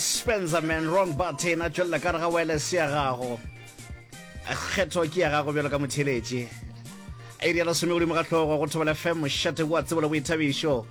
Spencer man wrong button a tšwelela ka re ga wireless ya gago kgetho ke ya gago bjalo ka motheletši e rialo some godimo ga hlogo go thobela fm mošate wa tsebo le boithabišo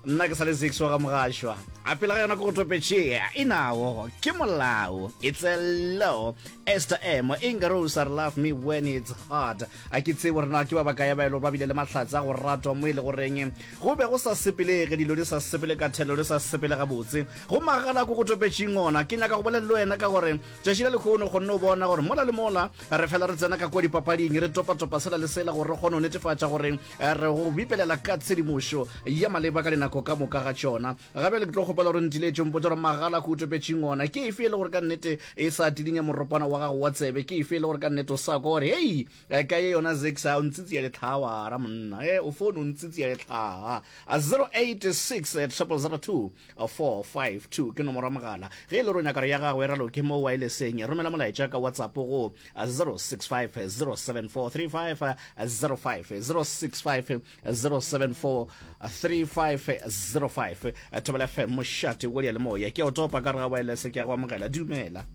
nna ke sa le zix wa ga mogašwa a pele ga yona ke go topetšea e nago ke molao it's a law ester emo inga rose are love me when it's hard A ke tsebe gore na ke ba bakae ba e lego ba bile le mahlatse a go ratwa mo e lego goreng go be go sa sepelege, dilo di sa sepele ka thelelo, di sa sepele gabotse. Go magala ko go topetšeng ona. Ke nyaka go bolela le wena ka gore tšatši la lekgono o kgonne go bona gore mola le mola re fela re tsena ka kua dipapading, re topatopa sela le sela gore re kgone go netefatša gore re go bipelela ka tshedimošo ya maleba ka dinako ka moka ga tšona. Ga bjale ke tlo kgopela gore ntiletše o mpotše gore magala go utopetšeng ona ke efe e le gore ka nnete e sa tidinya moropana wa gago wa tsebe ke efe e le gore ka nnete o sa kwa gore hei eh, ka ye yona zex a o ntsitsi ya letlhawara monna e eh, o fone o ntsitsi ya letlhaa 086 002 452 ke nomoro ya mogala ge e le gore o nyaka re ya gago e raloke mo wa e leseng romela molaetša ka whatsapp go 065 074 35 05 065 074 3505 thobela fm mošate o le moya ke a o topa ka re ga waelese ke ya go amogela dumela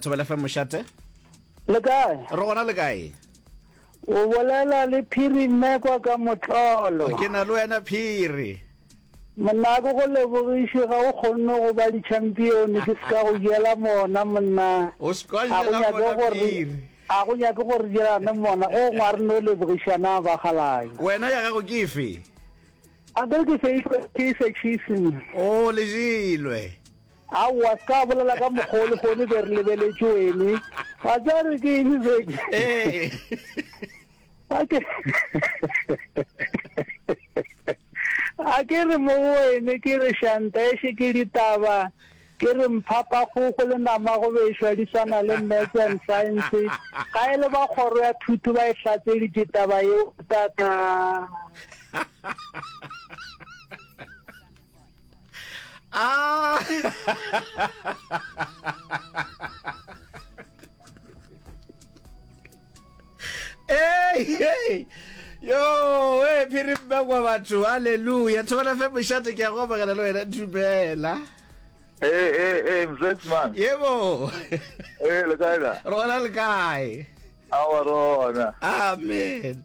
thobela fm mošate le kae re gona le kae o bolela le phiri mme kwa ka motlolo ke na le wena phiri monna ko go lebogiše ga o kgonne go ba di-champion ke se ka go jela mona monna ga go nyake gore A go nyake gore re dirane mmona go ngwa re no lebogiša na ba galanya. Wena ya gago ke efe? A ke re ke seilwe ke se chiefs nna. O lejilwe. Aowa se ka bolela ka mokgwa o lehono be re lebeletše wene wa tseba re ke eng sedi ee a ke re mo go wene ke re shanta eshe ke ditaba Ke re Mphapakgogo le Namagobešwa di swana le Maths and Science, ga e le ba kgoro ya thuto ba e hlatseditše taba yeo tata. Hey, hey. Yo, hey, phiri mma kwa batho. Hallelujah. Thobana fe moshate ke a go amogela le wena dumela. Hey, hey, hey, mzet man. Yebo. Hey, le kae na? Rona le kae? Awa rona. Amen.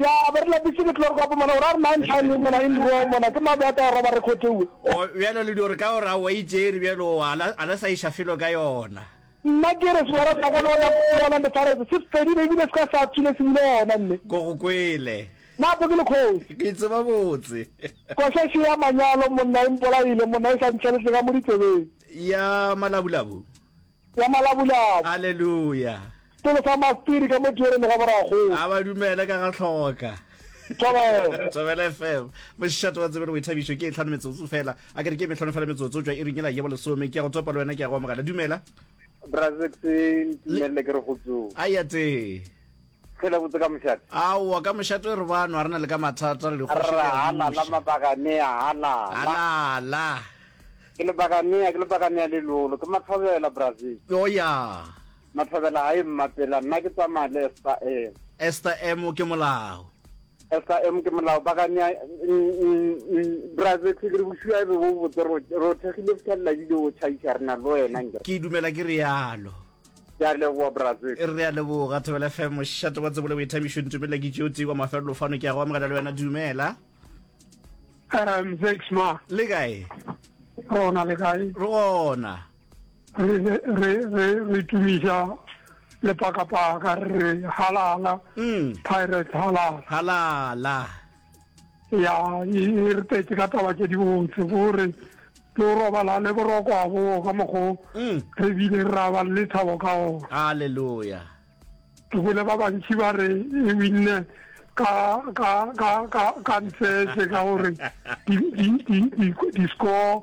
Ya be re lapišitše ke tlorko gape mona, gore a re na ntlha le mona in raw mona, ke mabe a ka roba re khotewe. O, bjalo le di gore ka gore a wa itšeri bjalo o, a la, a la sa iša felo ka yona. Nna ke re sehwara sa ka le gona, le gona le faretse, se fedile e bile se ka sa thule se bile gona mme. Ko go kwele. Napo ke le kgoši. Ke tseba botse. Košaši ya manyalo monna e mpolaile monna e sa ntšheletle ka mo ditsebeng. Ya malabulabu. ya malabulabu. Aleluya! Setolo sa Mastiri ka mo Tiereni ga Borakgolo. A ba dumele ka ga hloka. Thobela. Thobela FM. Mošate wa tsebelo boithabišo ke e tlhano metsotso fela. A ke re ke metlhano fela metsotso tšwa iring e la jebo lesome. Ke a go topa le wena ke a go amogela. Dumela. Brazex ntumelele ke re go tsoe. A ya tee. Ge la botse ka mošate. Aowa, ka mošate e re bano, a re na le ka mathata, re dikgoši le ya buša. Halala, mabakanea, halala. Halala. Ke lebakanea, ke lebakanea le lolo, ke mathobela, Brazil. O ya. Mathobela a e mmapela, nna ke tsamaya le Esther M. Esther M ke molao. Esther M ke molao, bakanea, Brazil, ke re bošua e be bo botse, re o thekgile go fitlhelela ebile o tšhaiša, re na le wena nje. Ke dumela ke realo. ke a leboa brazil re a leboga thobela fm mošate wa tsebole boithabišo ntumelela ke tšeo tee kwa mafelelo fano ke ya go amogela le wena dumela um thanks ma le kae rona le kae rona re re re re tumiša lepakapaka re halala mm. pirate halala halala ya e re tetse ka taba tse di botse gore ke o robala le boroko a boo ka mokgo mm. re bile re raba le thabo ka ona halleluja ke bone ba bantši ba re e winne ka ka ka ka ka ntsese ka gore di score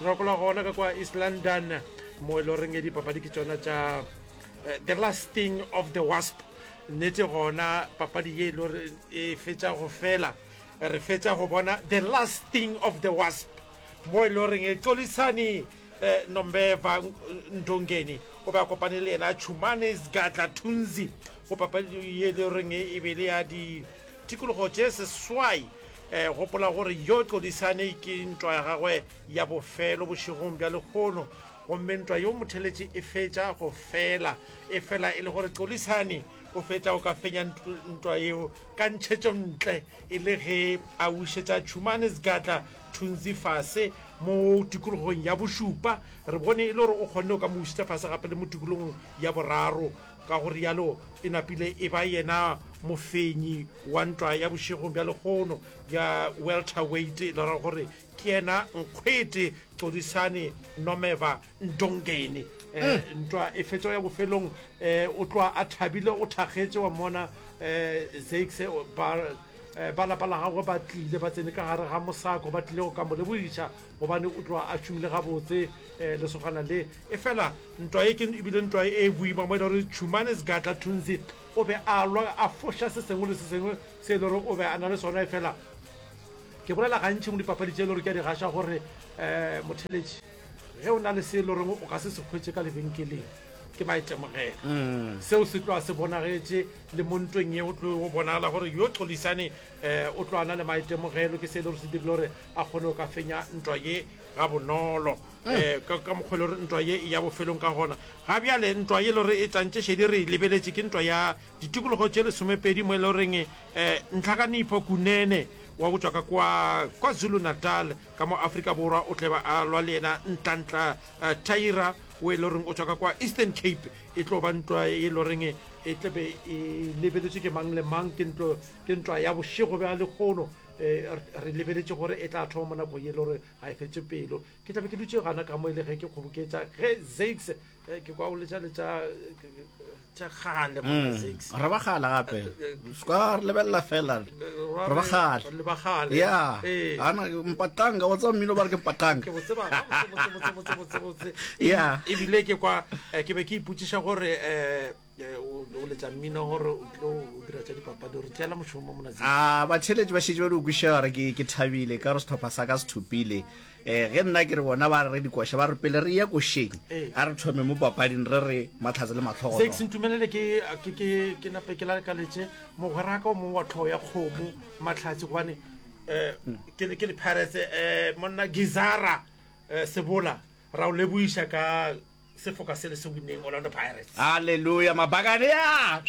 Gopola gona ka kwa East London mo e le goreng e dipapadi ke tsona tša eh, the last thing of the wasp nnete gona papadi ye e le gore e fetša go fela re fetša go bona the last thing of the wasp mo e le goreng e xolisane um eh, nombeva ndongeni o be a kopane le yena chumane sgatla tunzi go papadi ye e le goreng e be le ya ditikologo tše seswai Gopola gore yo tlodisane ke ntwa ya gagwe ya bofelo bošegong bja lehono, gomme ntwa yo motheletši e fetša go fela. Efela e le gore tlodisane o fetša go ka fenya ntwa yeo ka ntšhetšo ntle e le ge a wišetša tšhumane segatla thunzi fase mo tikologong ya bošupa, re bone e le gore o kgonne go ka mo wišetša fase gape le mo tikologong ya boraro. Ka go rialo e napile e ba yena mofenyi wa ntwa ya bošegong bja lekgono ya welterweight, le ra gore ke yena Nkgwete Xodisani Nomeva Ndongeni. Ntwa e fetša ya bofelong o tloga a thabile, o thakgetše, wa mmona Zakes ba lapa la gagwe ba tlile ba tsene ka gare ga mosako, ba tlile go ka mo lebogiša. gobane o tloa a tšhumile gabotse um lesogana le efela ntwa ye ke ebile ntwa e e boima mo e le gore tšhumane segatla thunzi o be a lwa a foša se sengwe le se sengwe se e le gore o be a na le sona efela ke bolela gantšhi mo dipapadi tše e le gore ke a di gaša gore um motheletši ge o na le se e le goreng o ka se se kgwetše ka lebenkeleng ke maitemogelo mm. seo se tloa se bonagetše le mo ntweng ye o tlo go bonagala gore yo xolisane um eh, o tloana le maitemogelo ke se e le gore se dirile gore a kgone go ka fenya ntwa ye ga bonolo eh, ka ka mokgwa e le gore ntwa ye e ya bofelong ka gona ga bjale ntwa ye e le gore e tantše šedi re e lebeletše ke ntwa ya ditikologo tše lesomepedi mo e le goreng um ntlhakanipho kunene wa go tswa ka kwa kwa zulu natal ka mo aforika borwa o tleba a lwa le yena ntlantla uh, taira o e le goreng o tswa ka kwa eastern cape e tlo ba ntwa e le goreng e tlebe e lebeletswe ke mang le mang ke ntlo ke ntwa ya bošego bja lekgono um re lebeletše gore e tla thoma mo nakong e le gore ga e fetse pelo ke tlabe ke dutse gana ka mo e le ge ke kgoboketsa ge zakes eh, ke kwa o letša letša tša gale mona mm. zakes re bagala gape eh, eh, ska re lebelela fela re bagale le bagale ya ana mpatanga wa tsa mmino ba re ke mpatanga ke botse ba botse botse botse botse ya e bile ke kwa ke be ke iputsiša gore um o letša mmino gore o tlo o dira tša dipapadi gore tšeela mošomo mo monatsing a batheletši ba šetše ba di o kwišega re ke thabile ka gore setlhopha sa ka se thopile um ge nna ke re bona ba re dikoša ba re pele re ye košeng a re thome mo papading re re matlhatse le matlhogo se ntumelele ke nape ke lalekaletse mogweraka o mongwe wa tlhogo ya kgomo matlhatse gobane um ke le pirates um monna gizara um sebola Ra o lebogiša ka sefoka se le se winneng Orlando Pirates. Haleluya! Mabakane a!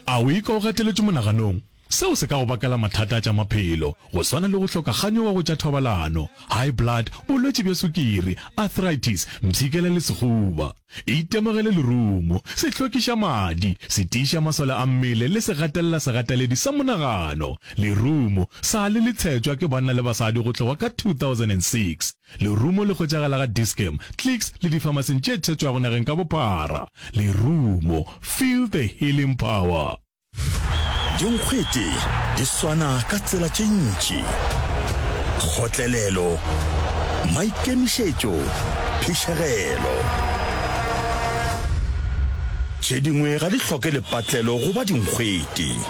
A o ikwa o gateletšwe monaganong? Seo se ka go bakela mathata a tša maphelo, go swana le go hloka kganyogo go tša thobalano, high blood, bolwetši bja sukiri, arthritis, mpshikela le sehuba. Itemogele lerumo, sehlokiša madi, setiiša masole a mmele le segatelela segateledi sa monagano. Lerumo, sa le le tshetšwa ke banna le basadi go tloga ka 2006. Lerumo le hwetšagala ga Dis-Chem, Clicks le difamasing tše thetšwago nageng ka bophara. Lerumo, feel the healing power. Dinkgwete di swana ka tsela tše ntši, kgotlelelo, maikemišetšo, phišegelo. Tše dingwe ga di hloke lepatlelo go ba dinkgwete.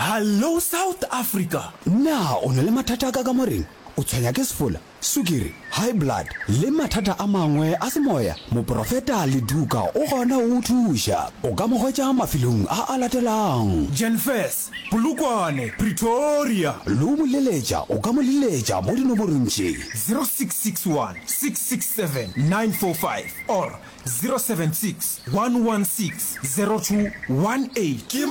Hallo South Africa! Na o na le mathata a ka kamoreng? O tshwenya ke sefola, sukiri, high blood le mathata a mangwe a semoya? Moporofeta Leduka o gona go go thuša. O ka mo hwetša mafelong a a latelago. Jenfess, Polokwane, Pretoria. Le o mo leletša, o ka mo leletša mo dinomorong tše. 0661 667 945 or 076 116 0218. Ke.